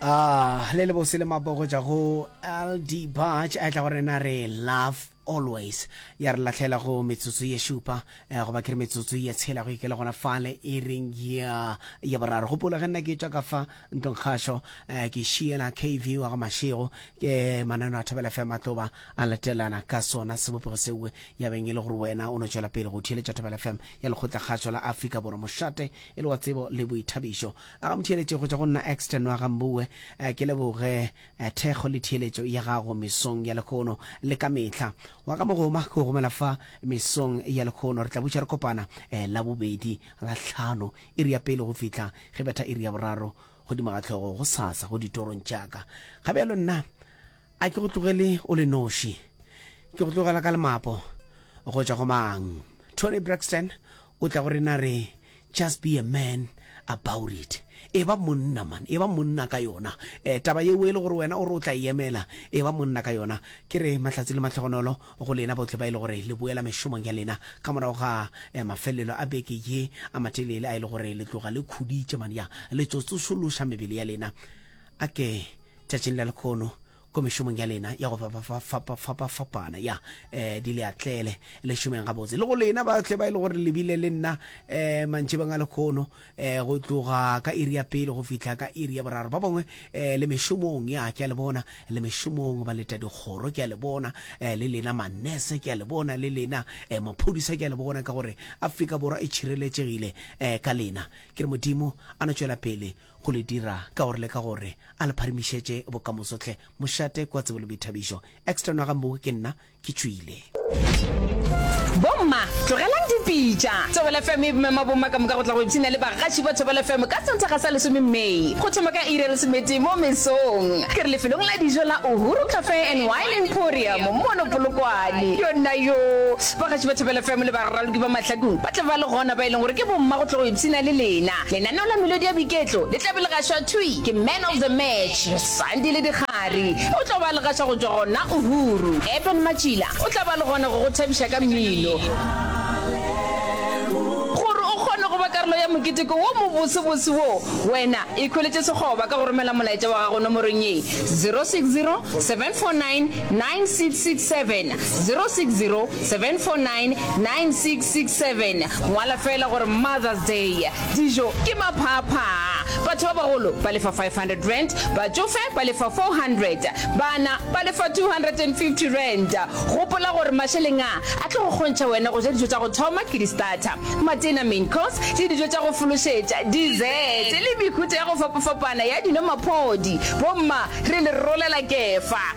ah le le bose le mabogo tša go ld batch a tla go rena re love always ya re latlhela go metsotso ye šupa eh, goba ke re metsotso ye tshela go ikele gona fale e reng ya ya boraro gopola ge nna ke tšwa ka fa ntlong kgašo eh, ke šiela kv wa go mašego ke manano a thobela fe matloba a latelana ka sona sebopego sewe ya beng e le gore wena o no tšwela pele go theeletša thobela fm ya lekgotla kgašo la afrika borwa mošate e le wa tsebo le boithabišo. A ga motheeletše go tšwa go nna Axton wa ga Mboue, a ke leboge thekgo le theeletšo ya gago mesong ya lekhono le ka mehla. Wa ka mogoma ke go romela fa mesong ya lekhono, re tla butša re kopana Labobedi, Lahlano, iri ya pele go fihla ge betha iri ya boraro godimo ga hlogo gosasa go ditorong tša ka. Ga bjalo nna. A ke go tlogele o le noši? Ke go tlogela ka lemapo go tšwa go mang? Toni Braxton o tla go rena re, Just be a man about it. Eba monna man, eba monna ka yona. Eh, taba yeo e le gore wena o re o tla e emela, eba monna ka yona. Ke re mahlatse le mahlogonolo go lena bohle ba e le gore le boela mešomong ya lena ka morago ga eh, mafelelo a beke ye a matelele a e le gore le tloga le khuditše man, ya le tsotsošološa mebele ya lena. A ke tšatšing la lekhono ko mešomong ya lena ya go fapafapafapafapafapana ya um di le atlele le šomeng gabotse le go lena ba tle ba e le gore lebile le nna um mantšhebeng a lekhono um go tloga ka iri ya pele go fihla ka iri ya boraro ba bangwe um le mešomong ya ke a le bona le mešomong ba leta dikgoro ke a le bona um le lena manese ke a le bona le lena um maphodisa ke a le bona ka gore afrika borwa e tšhireletšegile um ka lena ke re modimo a no tšwela pele go le dira ka gore le ka gore a le pharimišetše bokamoso hle mošate kwa tsebo le boithabišo extra nwa gambogo ke nna ke tšwile. Bomma, tlogelang dipitša! Thobela FM e mema bomma ka moka go tla go ipshina le bagaši ba Thobela FM ka Sontaga sa lesome May, go thoma ka iri ya lesomete mo mesong. Ke re lefelong la dijo la Uhuru Cafe and Wine Emporium mono Polokwane. Yonnayoo! Bagaši ba Thobela FM le baraloki ba mahlakong ba tla ba le gona, ba e leng gore ke bomma go tla go ipshina le lena. Lenaneo la melodi ya boiketlo le tla be le gašwa thwi ke Man of the Match, Sandile Dikgari. O tla ba a le gaša go tšwa gona Uhuru. Eben Matšila o tla ba a le gona go go thabiša ka mmino. Gore o kgone go ba karolo ya moketeko wo mobosebose wo, wena ikhweletše sekgoba ka go romela molaetša wa gago nomorong ye, 0607499667, 0607499667. 67, ngwala feela gore Mother's Day, dijo ke maphaaphaa, batho ba bagolo ba lefa R500, batšofe ba lefa R400, bana ba lefa R250. Gopola gore mašeleng a, a tlo go kgontšha wena go ja dijo tša go thoma ke di-starter, matena, main course, le dijo tša go fološetša, dessert, le mehuta ya go fapafapana ya dino-maphodi. Bomma, re le rolela kefa!